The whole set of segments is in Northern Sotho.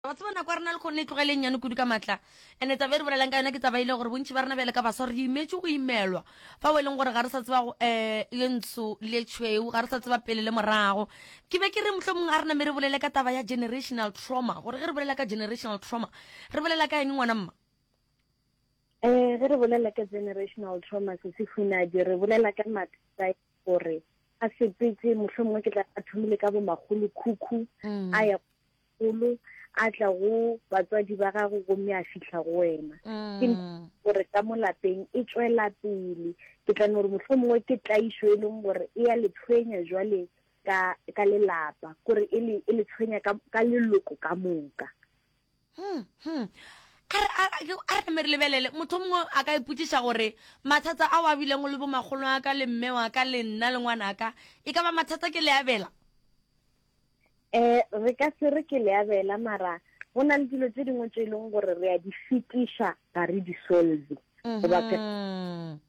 wa tseba nako ya rena le kgone e tlogele nnyane kudu ka matla ande taba e re bolelang ka yona ke taba ile gore bontši ba rena bjale ka baswa re imetse go imelwa fa o e leng gore ga re sa tseba um eh, le ntsho le tšhweu ga re sa tseba pele le morago ke be ke re motlho mongwe a rena me re bolele ka taba ya generational trauma gore ge re bolela ka generational trauma re bolela ka eng ngwana mma um ge re bolela ka generational trauma se se funadi re bolela ka mathata e gore a sepetse motlho mongwe ke tla a thomile ka bomagolo khukhu mm. a ya golo a tla go batswadi ba gago gomme a fitlha go wena ke mm. gore ka mo lapeng e tswela pele ke tla gore motlho mongwe ke tlaiso e leng gore e ya le tshwenya jwale ka ka lelapa gore e le e le tshwenya ka ka leloko ka moka hmm, hmm. a re me re lebelele motho mongwe a ka ipotsiša gore mathata a o a bileng le bomagolo a ka le mme wa ka le nna le ngwana ka e ka ba mathata ke le abela um re ka se re ke le abela mara go na le dilo tse dingwe tse e leng gore re a di fetiša ga re di solve goba um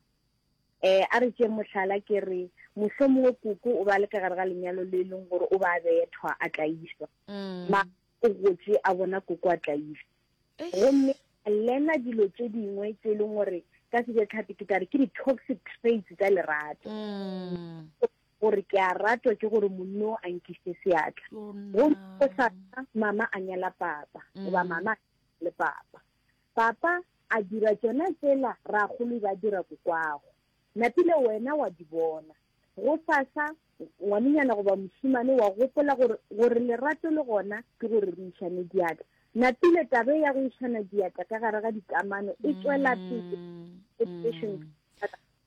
a re tšee mohlala ke re moso mongwe koko o ba le ka gare ga lenyalo le e leng gore o ba bethwa a tlaiswa ma o gotse a bona koko a tlaiswa gomme lena dilo tse dingwe tse e leng gore ka sejatlhapi ke tare ke di-toxic traits tsa lerato gore ke a ratwa ke gore monno a nkise seatla go o sa mama a nyala papa goba mm. mama le papa papa a dira tsona tsela ra golo ba dira kokwago napile wena wa di bona go sasa ngwanenyana goba mosimane wa gopola gore gore lerato le gona ke gore re išane diatla napile tabe ya go išana diatla ka gare ga dikamano e tswela pele mm.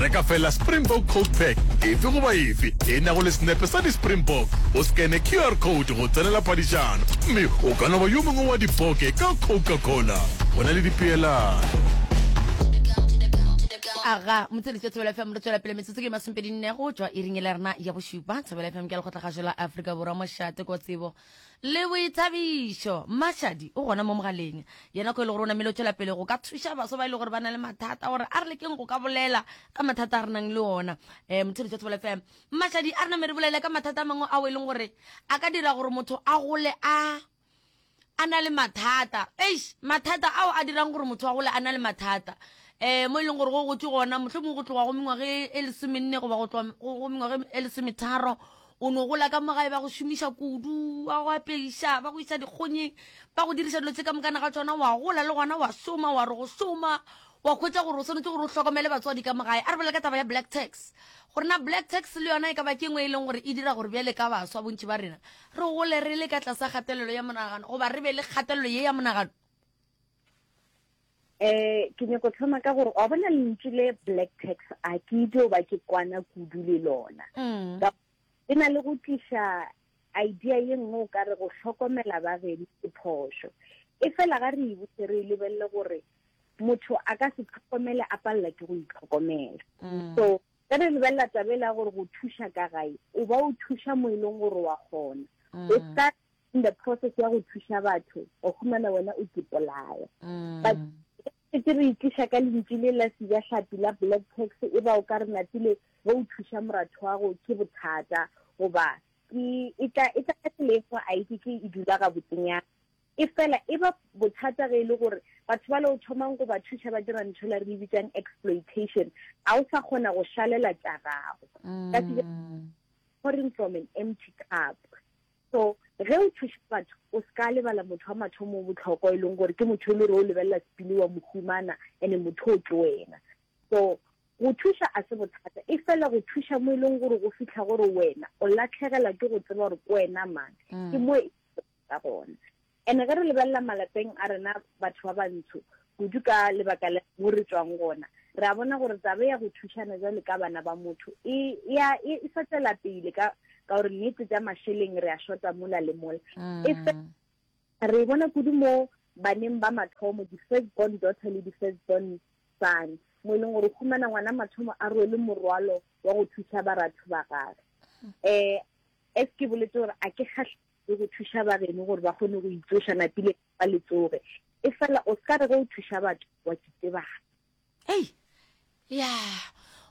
Re ka fela Springbok Coat Pack efe goba efe e nago le senepe sa di-Springbok, o scanne QR code go tsenela phadišano, mme o ka no ba yo mongwe wa dipoke ka Coca-Cola. Go na le dipeelano. aga motseletša thobela fm re tswela pele metsotso ke masomepedi nne go tšwa iring e le rena ya bošupa thobela fm ke a lekgotla gašo la afrika borwa mošate ko tsebo Le boithabišo. Mmashadi o gona mo mogaleng. Yena ko e le gore o namile o tšwela pele go ka thuša baswa ba e le gore ba na le mathata gore a re lekeng go ka bolela ka mathata a re nang le ona. Um, Mothedi jwa Tsebele FM. Mmashadi a re name re bolele ka mathata a mangwe ao e leng gore a ka dira gore motho a gole a a na le mathata. Eish, mathata ao a dirang gore motho a gole a na le mathata. Eh, mo e leng gore go gotse gona mohlomongwe go tloga go mengwage e lesomenne goba go tloga go mengwage e lesometharo O no gola ka mo gae, ba go šomiša kudu, ba go apeiša, ba go isa dikgonyeng, ba go diriša dilo tše ka mokana ga tšona, wa gola le gona wa šoma, wa re go šoma, wa hwetša gore o swanetše gore o hlokomele batswadi ka mo gae. A re bolela ka taba ya black tax, gore na black tax le yona e ka ba ke e nngwe e leng gore e dira gore bjale ka baswa bontši ba rena re gole re le ka tlasa kgatelelo ya monagano goba re be le kgatelelo ye ya monagano. eh ke nyako tlhoma ka gore wa bona lentsi le black tax a ke itse o ba ke kwana kudu le lona mm. e na le go tliša idea ye nngwe o ka re go hlokomela ba gedi ke phošo e fela ga re ebotse re e lebelele gore motho a ka se tlhokomele a palela ke go itlhokomela mm. so ka re lebelela tabela gore go thuša ka gae o ba o thuša mo e leng gore wa kgona mm. o ka in the process ya go thuša batho o humana wena o kipolaya mm. but ke re itliša ka lentši le la sija hlapi la black tax e ba o ka re natile ge o thuša moratho wa go ke bothata goba e, e tla e tla ka tsela e fa a itse ke e dula ga botsenyana e fela e ba bothata ge e le gore batho ba le o thomang go ba thuša ba dira ntho la re e bitsang exploitation ga o sa kgona go šalela tša gago mm. ka pouring from an empty cup So, ge o thuša batho, o se ka lebala motho wa mathomo o bohlokwa, e leng gore ke motho e le gore o lebelela sepili wa mohumana, ene motho o ke wena. So, go thuša a se bothata, e fela go thuša mo e leng gore go fitlha gore wena o latlhegela ke go tseba gore ke wena mang, mm. ke mo e ka gona. And ge re lebelela malapeng a rena batho ba bantsho, kudu ka lebaka la mo re tšwang gona, re a bona gore taba ya go thušana bjalo ka bana ba motho e, ya, e, e sa tšwela pele ka, ka gore nnete tša mašeleng re a shota mola le mola. E fe, re e bona kudu mo baneng ba mathomo, di-first born daughter le di-first born son, mo e leng gore o humana ngwana mathomo a rwele morwalo wa go thuša baratho ba gagwe. Um As ke boletse gore a ke kgahle. le go thuša bageno gore ba kgone go itsoša napile ba le tsoge e fela o ska re ge o thuša batho wa kitsebana ei ya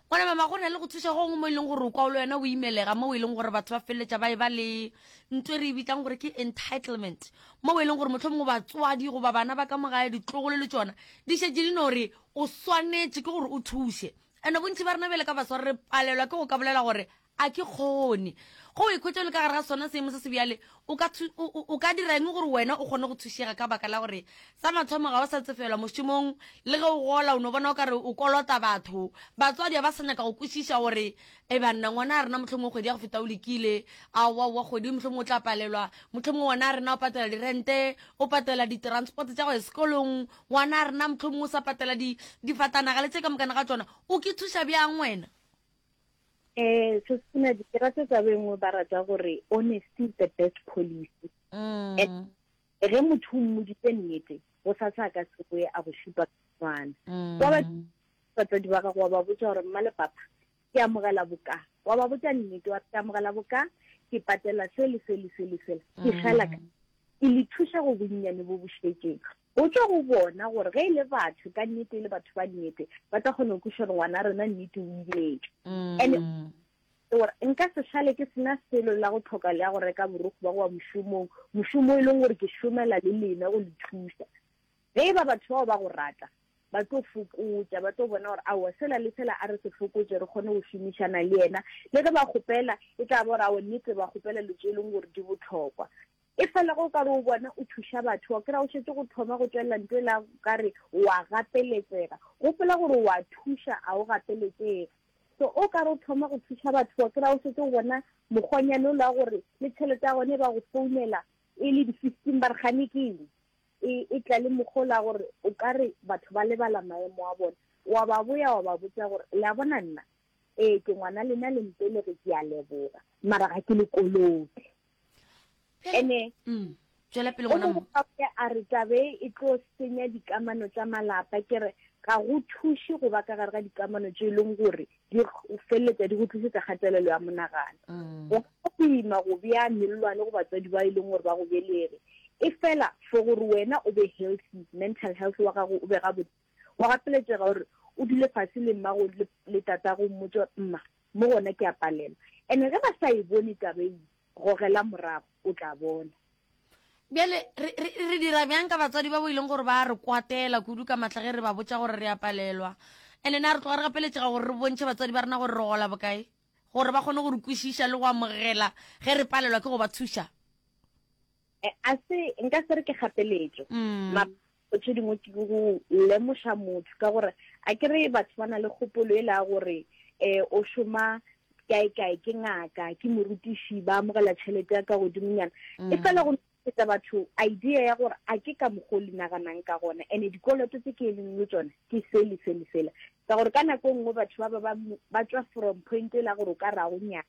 gona mama go na le go thuša gongwe mo e leng gore o kwa o le wena o imelega mo e leng gore batho ba feleletša ba e ba le nto e re e bitlang gore ke entitlement mo e leng gore motlho mongwe batswadi goba bana ba ka mogae ditlogolo le tsona di šetse di no gore o swanetše ke gore o thuše and-e bontši ba rena bjale ka basware re palelwa ke go ka bolela gore A ke kgone go o ikhwetša o le ka gare ga sona seemo se se bjale? O ka, o, o, o ka dira eng gore wena o kgone go thušega ka baka la gore sa mathomo ga o sa tsefelwa mošomong? Le ge o gola o no bona o ka re o kolota batho. Batswadi ga ba sa nyaka go kwešiša gore, Ee, banna, ngwana a rena mohlomongwe kgwedi ya go feta o lekile. Aowa, aowa, kgwedi mohlomongwe o tla palelwa. Mohlomongwe ngwana a rena o patela dirente, o patela ditransport tša go ya sekolong. Ngwana a rena mohlomongwe o sa patela di, difatanaga le tše ka mokana ga tšona. O ke thuša bjang wena? Eh, se sena di rata tsa bengwe ba rata gore honesty is the best policy. Mm. Eh, ge motho o mmoditse nnete go sa sa ka sekoe a go šupa tswana mm. wa batsadi ba gago wa ba botsa gore mma lepapa ke amogela boka wa ba botsa nnete wa ke amogela boka ke patela se le se le se le sela ke mm. fela ka e le thuša go bonnyane bo bošetšeng Botša go bona gore ge e le batho ka nnete e le batho ba nnete ba tla kgona go kwiša gore ngwana rena nnete o imetše. And gore nka se šale ke sena selo la go tlhoka le ya go reka borokgo ba go wa mošomong, mošomo e leng gore ke šomela le lena go le thuša. Ge e ba batho bao ba go rata ba tlo fokotša, ba tlo bona gore aowa sela le sela a re se fokotše re kgone go šomišana le yena. Le ge ba kgopela e tla ba gore aowa nnete ba kgopela dilo tše e leng gore di bohlokwa. E fela ge o ka re o bona o thuša batho, wa kry-a o šetše go thoma go tšwelela nto e la go ka re o a gapeletsega. Gopola gore o a thuša, a o gapeletsege. So o ka re o thoma go thuša batho, wa kry-a o šetše o bona mokgwanyane o la gore le tšhelete ya gone e ba go founela e le di-fifteen ba re gane ke eng, e e tla le mokgwa o la gore o ka re batho ba lebala maemo a bona. Wa ba boya wa ba botša gore, le a bona nna, ee, ke ngwana lena le mpelege, ke a leboga, mara ga ke le kolote. ene mm, tšwela pele o mo bokae a re tabe e tlo senya dikamano tša malapa ke re ga go thuše go ba ka gare ga dikamano tse e leng gore di feleletsa di go tlisetsa kgatelelo ya monagano mm. go ka boima go bea mellwane go batswadi ba e leng gore ba go belere e fela for gore wena o be healthy mental health wa gago o be gabotse wa gapeletšega gore o dule fase le mmago le tatago mmotsa mma Mo gona ke a palelwa. And ge ba sa e bone taba e, gogela morago, o tla bona. Bjale, re, re, re dira bjang ka batswadi ba bo e leng gore ba a re kwatela kudu ka matla ge re ba botša gore re a palelwa? And na re tloga re gapeletšega gore re bontšhe batswadi ba rena gore re gola bokae, gore ba kgone go re kwešiša le go amogela ge re palelwa ke go ba thuša? Eh, a se nka se re ke gapeletso mm. mapho tse dingwe ke go lemoša motho ka gore a ke re batho ba na le kgopolo e la gore um o šoma kae kae ke ngaka ke morutiši ba amogela tšhelete ya ka godimonyana mm. e fela go etsa batho idea ya gore a ke ka mokgwa o le naganang ka gona and-e dikoloto tse ke e leng le tsone ke sele sele fela ka gore ka nako e nngwe batho ba ba ba tswa from point e la gore o ka rago nyana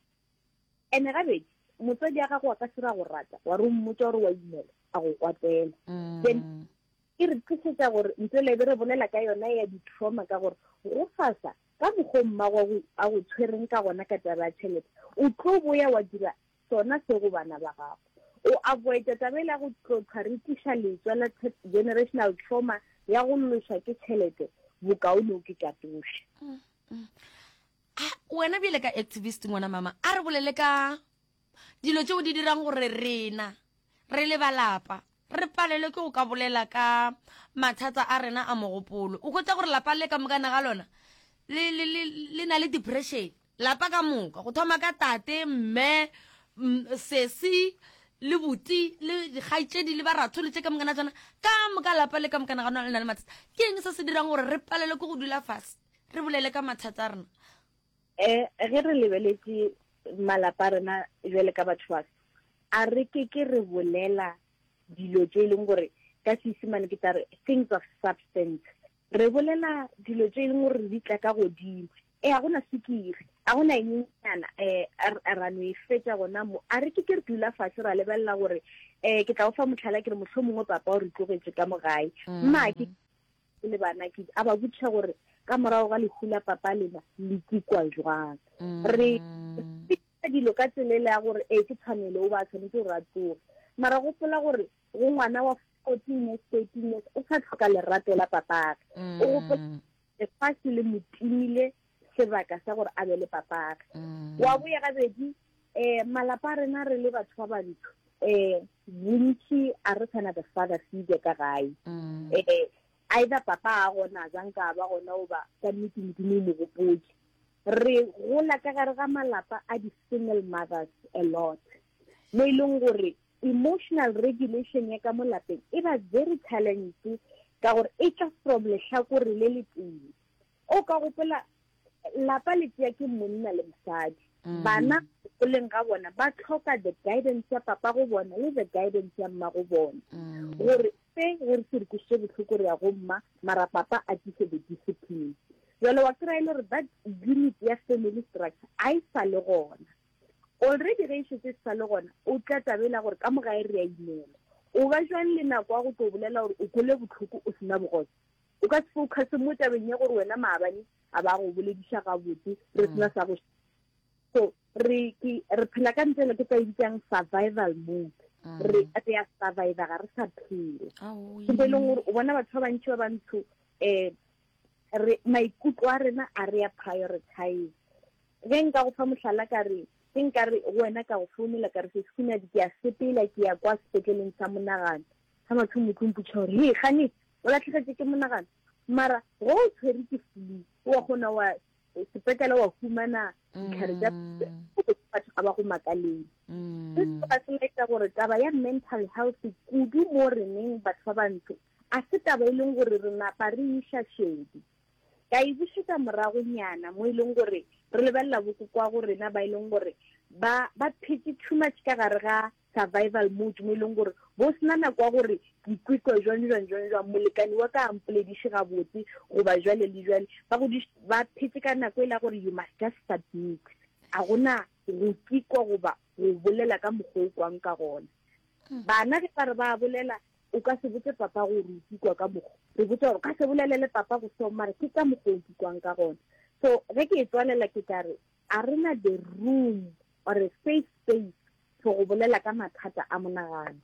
Ene gabedi, motswadi a gago wa ka sira go rata, wa re o mmotsa gore wa imela, a go kwatela. Mm. Then, e re tlisetsa gore ntse lebe re bolela ka yona ya di-trauma ka gore go fasa ka mokgwa mmago a go tshwereng ka gona ka taba ya tšhelete o tlo boya wa dira sona se go bana ba gago o avoida taba e le ya go tlotlha re tiša letswa la generational trauma ya go loswa ke tšhelete bokaone o ke katoše mm, mm. a wena bjele ka activist ngwana mama a re bolele ka dilo tšeo di dirang gore rena re le balapa re palelwe ke go ka bolela ka mathata a rena a mogopolo o kgotsa gore lapa le ka mokana ga lona le na le depression lapa ka moka go thoma ka tate mme sesi le buti le dikgaitsedi le baratholo tse ka mokana tsona ka moka lapa le ka mokana ga lona le na le mathata ke eng se se dirang gore re palelwe ke go dula fase Re bolele ka mathata a rena. E, ge re lebeletše malapa a rena jwale ka batho ba a re ke ke re bolela dilo tše e leng gore ka Seesimane ke tla re things of substance. Re bolela dilo tše e leng gore re di tla ka godimo. E, ga gona sukiri, ga gona enyenyana um e, ra no e fetša gona mo. A re ke ke re dula fase ra lebelela gore um ke tla o fa motlhala ke re mohlho mongwe papa o re tlogetše ka mo gae. Mm. Mma ke e le banakedi a ba botšha gore ka morago ga lehu la papa lena le tsikwa jwang mm. re dilo ka tselele ya gore ee ke tshwanelo o ba tshwanetse gore a tsoge mara gopola gore go ngwana wa fourteen years thirteen years o sa tlhoka lerato la papage o mm. gopola lefatshe le motimile sebaka sa gore a be le papage mm. wa boya gabedi um malapa a rena re le batho ba bantsho um bontši a re tshwana the father figure ka gae um either papa a gona jang ka ba gona o ba ka nnete modimo o mogopotse re gola ka gare ga malapa a di-single mothers a lot mo e leng gore emotional regulation ya ka mo lapeng e ba very challenge ka gore e tla from letlhakore le le tee o ka gopola lapa le tšea ke monna le mosadi mm. bana goleng ga bona ba tlhoka the guidance ya papa go bona le the guidance ya mma go bona mm. gore se re re se re kwisitse botlhoko re ya go mma mara papa a tise the discipline jalo wa kry-e le gore that unit ya family structure a e sa le gona already ge e shetse e sa le gona o tla tabela gore ka moga e re ya imela o ba jwang le nako ya go tlo bolela gore o kole botlhoko o sena bogosa O ka se focuse mo tabeng ya gore wena maabane a ba go bolediša gabotse re mm. sena sa go so re ke re phela ka ntle le ke tla ibitsang survival mode mm. re re ya survive ga re sa phela ke be e leng gore o bona batho ba bantši ba bantsho um re maikutlo a rena a re ya prioritize ge nka go fa mohlala ka re ke nka re wena ka go founela ka re se sekunadi ke ya sepela ke ya kwa sepetleleng sa monagano sa matho motlong putšha gore he gane O latlhegetše ke monagano. Mara, go o tshwere ke flu, wa kgona wa sepetlele wa humana ditlhare tša mm. batho ga ba go makaleng. Mm. Se se ba selaetsa gore taba ya mental health kudu mo reneng batho ba bantsho a se taba e leng gore re napa re iša šedi ka e bušetsa moragonyana mo e leng gore re lebelela bokoko wa go rena ba e leng gore ba ba phetse too much ka gare ga survival mode mo e leng gore bo sena nako ya gore ke ikwekwa jwang jwang jwang jwang molekane wa ka a mpolediše gabotse goba jwale le jwale ba go ba phetse ka nako e la gore you must just submit a gona go kikwa goba go bolela ka mokgwa o kwang ka gona hmm. bana ge ba re ba bolela o ka se botse papa gore o kikwa ka mokgwa re botsa gore ka se bolelele papa go seo mare ke ka mokgwa o kikwang ka gona so ge ke e tswalela ke ka re A re na the room or a safe space for go bolela ka mathata a monagano.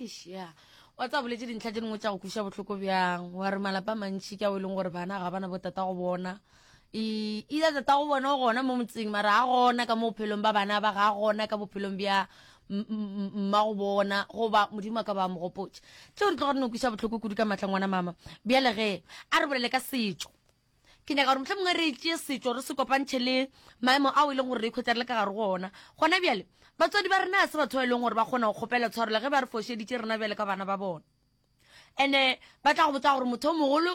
Eish, ya wa tsa boletse dintlha tse dingwe tša go kuša bohloko bjang wa re malapa a mantši ka o e leng gore bana ga bana botata go bona e ile tata go bona o gona mo motseng mara ga gona ka mo bophelong ba bana ba ga gona ka bophelong bja mma go bona goba modimo a ka ba mogopotša tšeo di tlo gore ne o kuša bohloko kudu ka matlangwana mama bjale ge a re bolele ka setšo Ke nyaka gore mohlomongwe re tšee setšo re se kopantšhe le maemo ao e leng gore re ikhwetša re le ka gare go ona gona bjale. Batswadi ba rena ga se batho ba e leng gore ba kgona go kgopela tshwarelo ge ba re fošeditše rena bjale ka bana ba bona. And-e ba tla go botsa gore motho o mogolo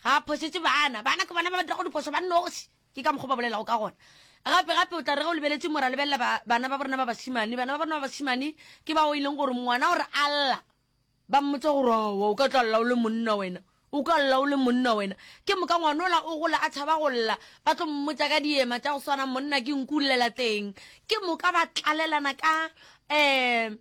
ga a phošetše bana, bana ke bona ba ba dirago diphošo ba noši. Ke ka mokgwa o ba bolelago ka gona. Gape-gape o tla re ge o lebeletše mo ra lebelela bana ba bo rena ba bašemane, bana ba bo rena ba bašemane ke bao e leng gore ngwana o re a lla. Ba mmotsa gore, Aowa, o ka tla lla o le monna wena, o ka lla o le monna wena. Ke moka ngwanola o gola a tšhaba go lla, ba tlo mmotsa ka diema tša go swana, Monna ke nku llela teng. Ke moka ba tlalelana ka um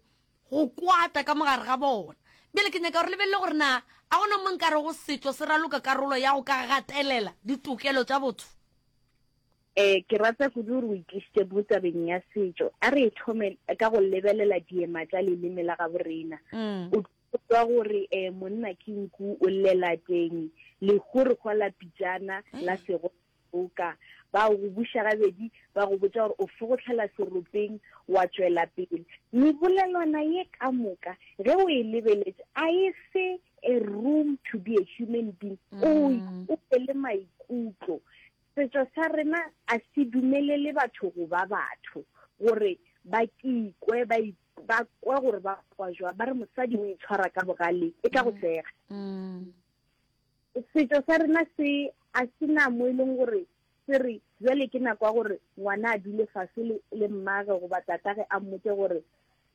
go kwata ka mo gare ga bona. Bjale ke nyaka gore lebelele gore na a go na mo nkarego setšo se raloka karolo ya go ka gatelela ditokelo tša botho. E, ke rata kudu gore o itlisitše mo tabeng ya setšo. A re e thome ka go lebelela diema tša leleme la gabo rena. Mm. O kwa gore e, monna ke nku o llela teng, legorikgwa la pitšana la sego boka ba go buša gabedi ba go botša gore o fogotlhela seropeng wa tšwela pele mebolelwana ye ka moka ge o e lebeletse a e se a room to be a human being mm. o o le maikutlo Setšo sa rena a se dumelele batho go ba batho, gore ba kikwe ba ba kwa gore ba kwa jwa ba re mosadi o itshwara ka bogale e ka go mm. sega mm. setso sa rena se a se na mo e leng gore se re jale ke nako ya gore ngwana a dule fase le mmage goba tatage a mmotse gore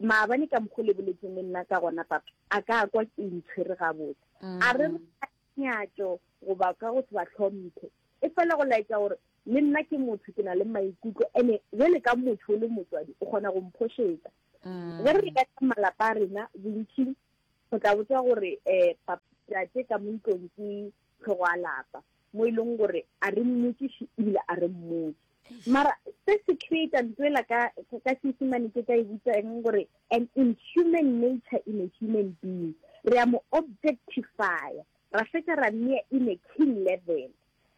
maabane ka mokgo le boletseng le nna ka gona papa a ka kwa ke ntshwere gabotse mm. a re nyatšo goba ka go se ba hlomphe. E fela go laetša gore le nna ke motho, ke na le maikutlo, ene bjale ka motho o le motswadi o kgona go mphošetsa. Mm. Ge re leka ka malapa a rena bontši go tla botswa gore um papate ka mo ntlong ke tlhogo a lapa mo e leng gore a re mmotšiše ebile a re mmotse Mara se se create ntwela ka ka Seesimane ke ka e bitsa eng gore an inhuman nature in a human being. Re a mo objectify ra fetsa ra mea in a king level.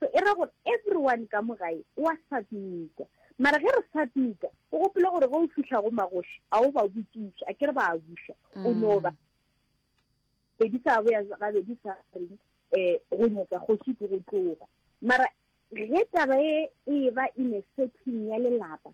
So e ra gore everyone ka mo gae o a submita. Mara ge re submita o gopole gore ge o fihla go magoši a o ba botšiša a ke re ba a buša o no ba pedi sa boya gabedi sa reng um go nyetsa kgoši ke go tloga mara Ge taba ye e eba inefsething ya lelapa,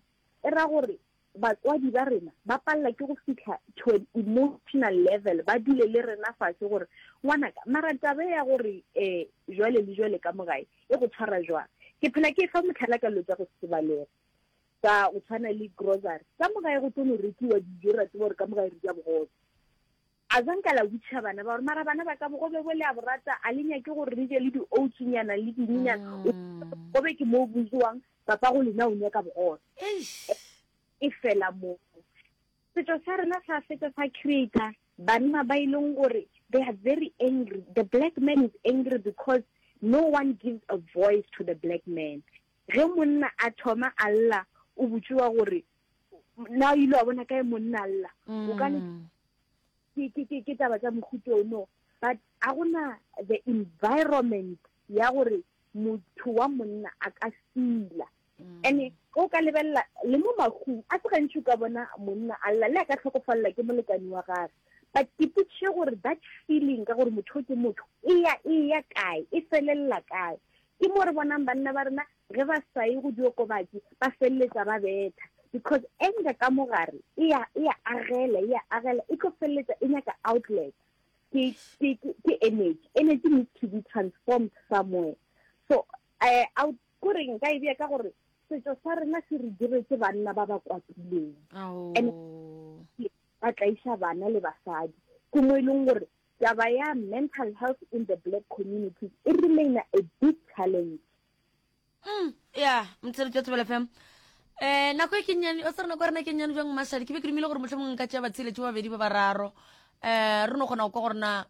e ra gore batswadi ba rena ba palela ke go fihla to an emotional level, ba dule le rena fase gore, Ngwanaka, mara taba ye ya gore um jwale le jwale ka mo gae e go tshwara jwang? Ke phela ke efa mohlala ka dilo tša go se balege, tsa go tshwana le grocery. Ka mo gae go tlo no rekiwa dijo, re a tseba gore ka mo gae re ja bogobe. A zwa nka la witšha bana ba gore, mara bana ba ka bogobe bo le a borata, a le nyake gore re je le di-oats nyana le dininyana? O mm. bogobe ke moo bo jewang, papa go lena o nyaka bogobe. E fela moo. Setso sa rena sa fetsa sa creator banna ba e leng gore they are very angry. The black man is angry because no one gives a voice to the black man. Ge monna a thoma a lla, o botšiwa gore na o ile wa bona kae monna lla o ka mm. ke taba tsa mohuto ono but a gona the environment ya gore motho wa monna a ka sila mm. and o ka lebelela le mo magong a se gantši o ka bona monna a lla le a ka tlhokofalela ke molekane wa gage but ke putše gore that feeling ka gore motho ke motho e ya e ya kae e felelela kae ke mo re bonang banna ba rena ge ba sa ye go diokobatši ba feleletša ba betha because anger ka mo gare e ya e ya agela e ya agela e tlo feleletša e nyaka outlet ke ke ke energy energy needs to be transformed somewhere so eh out go reng ka e bea ka gore setso sa rena se re diretse banna ba ba kwapileng and ba tlaisa bana le basadi ke mo e leng gore taba ya mental health in the black community e remaina a big challenge mm ya mtsere tša tsebela fm eh nako e kennyane o tsere nako rena kennyane jang mashadi ke be ke dumile gore motlho mongwe nka tšea batsheletše ba babedi ba bararo eh re no kgona go kwa gore na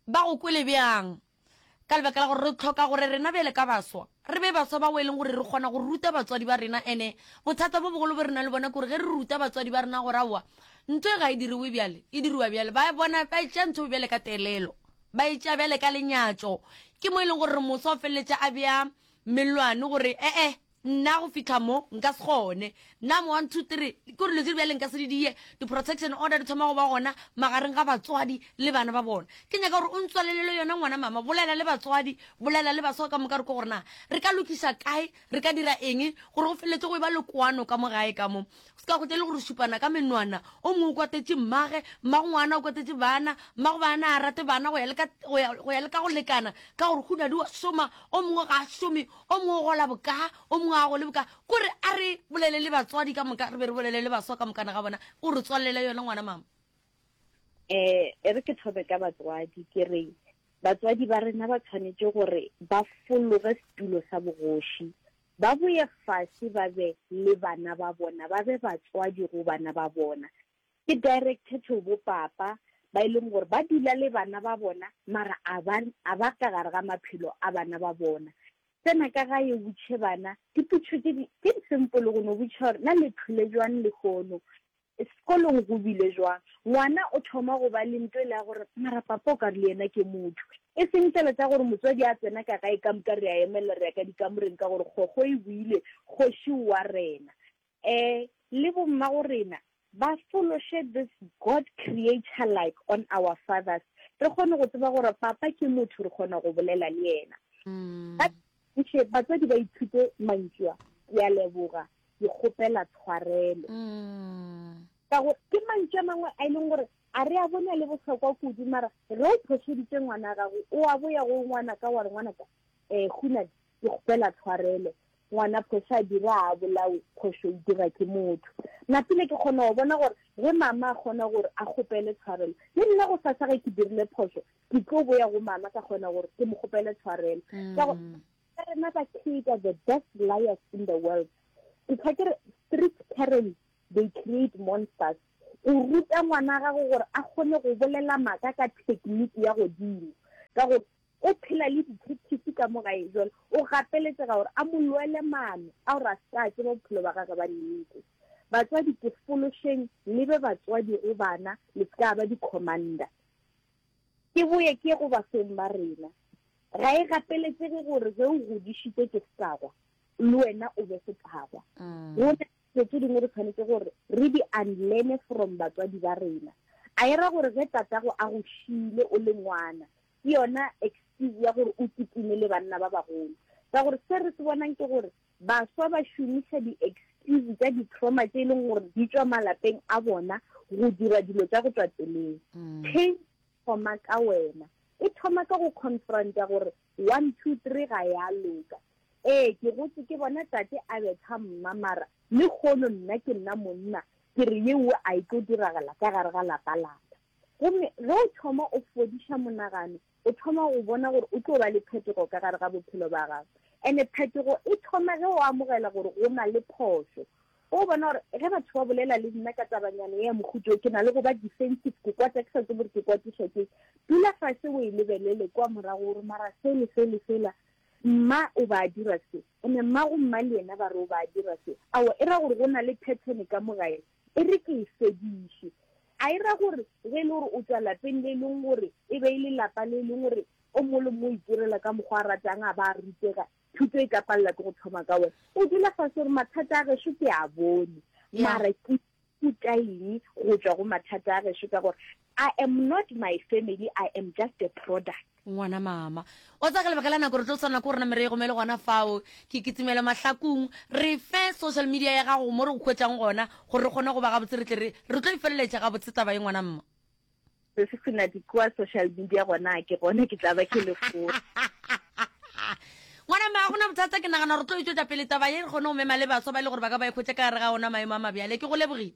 ba go kwele bjang ka lebaka la gore re tlhoka gore rena bele ka baswa re be baswa ba o e leng gore re kgona go ruta batswadi ba rena ene bothata bo bogolo bo re na le bona kore ge re ruta batswadi ba rena gore aowa ntho e ga e diriwe bjale e diriwa bjale ba bona ba tša ntho bjale ka telelo ba e tšea bjale ka lenyatšo, ke mo e lego gore moswa o feleletša a bea mellwane gore, E-e, nna go fihla mo nka se kgone. Nna mo one, two, three, ke gore dilo tše di bjale nka se di die, di-protection order di thoma go ba gona magareng ga batswadi le bana ba bona. Ke nyaka gore o ntswalelele yona ngwana mama, bolela le batswadi, bolela le baswa ka moka gore ke gore na re ka lokiša kae, re ka dira eng gore go feleletše go e ba le kwano ka mo gae ka mo. O se ka hwetša e le gore o šupana ka menwana, o mongwe o kwatetše mmage, mmagongwana o kwatetše bana, mmagobana a rate bana go ya le ka go ya, go ya le ka go lekana, ka gore go na le wa šoma, o mongwe ga a šome, o mongwe o gola boka, o mongwe a gole boka. Ko re a re bolele le batswadi ka moka, re be re bolele le baswa ka mokana ga bona, o re tswalele yona ngwana mama. Eh, e re ke thome ka batswadi ke re batswadi ba rena ba tshwanetse gore ba fologe setulo sa bogoši Ba boye fase ba be le bana ba bona, ba be batswadi go bana ba bona. Ke directed to bo papa ba e leng gore ba dula le bana ba bona mara a ba, a ba ka gare ga maphelo a bana ba bona. Tsena ka gae o butše bana, diputšo tše di, tše di simple go no butša gore na le phile bjang lehono. Sekolong go bile jwang? Ngwana o thoma go ba le nto e le ya gore, Mara papa o ka re le yena ke motho. E seng fela tša gore motswadi a tsena ka gae ka moka re a emelela re ya ka dikamoreng ka gore kgokgo e buile, Kgoši o a rena. Eh, le bommagorena ba fološe this God Creator like on our fathers, re kgone go tseba gore papa ke motho re kgona go bolela le yena. Ba. Ke še batswadi ba ithute mantšu a, ke a leboga, ke kgopela tshwarelo. Mm. Ka gore ke mantšu a mangwe a e leng gore a re a bone a le bohlokwa kudu, mara ge o phošeditše ngwana gago, o a boya go ngwana ka wa re ngwana ka, um Hunadi, ke kgopela tshwarelo ngwana phoso a dira a bolawe phoso e dira ke motho napile ke kgona go bona gore ge mama a kgona gore a kgopele tshwarelo le nna go sasa ge ke dirile phoso ke tlo boya go mama ka kgona gore ke mo kgopele tshwarelo mm. ka ka rena ba creator the best liars in the world ke tshwa ke re street parents they create monsters o ruta ngwana gago gore a kgone go bolela maka ka technique ya godimo ka gore o phela le dithethifi ka mogae jone o gapeletsega gore a molwele mano a gore a seka a tseba bophelo ba gage ba nnete batswadi ke fološeng lebe batswadi go bana le seka ba di-commander Ke boye ke go basweng ba rena. Ga e gapeletsege gore ge o godišitse ke setagwa, le wena o be setagwa. Go na le tse dingwe re tshwanetse gore re di unlearne from batswadi ba rena. A e ra gore ge tatago a go šiile o le ngwana, ke yona excuse ya gore o kitimele banna ba bagolo? Ka gore se re se bonang ke gore Baswa ba šomiša diekskiuse tša ditrauma tše e leng gore di tšwa malapeng a bona go dira dilo tša go tšwa tseleng. Change thoma ka wena. E thoma ka go confronta gore one, two, three ga ya loka. Ee, ke gotše ke bona tate a betha mma mara lekgono nna ke nna monna ke re yeo a e tlo diragala ka gare ga lapa laka. Gomme ge o thoma o fodiša monagano o thoma go bona gore o tlo ba le phetogo ka gare ga bophelo ba gago. Ene phetogo e thoma ge o amogela gore go na le phošo. O bona gore ge batho ba bolela le nna ka tabanyana ye ya mohuta wo, ke na le go ba defensive, ke kwata ke sa tsebe gore ke kwatišwa ke eng. Dula fase o e lebelele kwa morago gore mara se le se le sela mma o ba dira se, ene mmago mma le yena ba re o ba dira se. Aowa, e ra gore go na le pattern ka mo gae, E re ke e fediše. A e ra gore ge e le gore o tšwa lapeng le e leng gore e be e le lapa le e leng gore o mongwe le mongwe o itirela ka mokgwa a ratang a ba a rutega, thuto e ka palela ke go thoma ka wena. O dula fase gore mathata a gešo ke a bone, mara ke ithuta eng go tšwa go mathata a gešo ka gore I am not my family, I am just a product. ngwana mama wa tsaya ka lebaka la nako re tlo tshwanela ko rena merego me le gona fao ke kitimela mahlakong re fe social media ya gago mo re go kgwetsang gona gore re kgone go ba gabotse re tle re re tlo e feleletša gabotse taba ye ngwana mma se se sena dikua social media gona ke gone ke tla ba ke le foo ngwana mma ga gona bothata ke nagana gore tlo e tswetsa pele taba ye re kgone go mema le baswa ba e le gore ba ka ba e kgwetsa ka gare ga ona maemo a mabjale ke go lebogile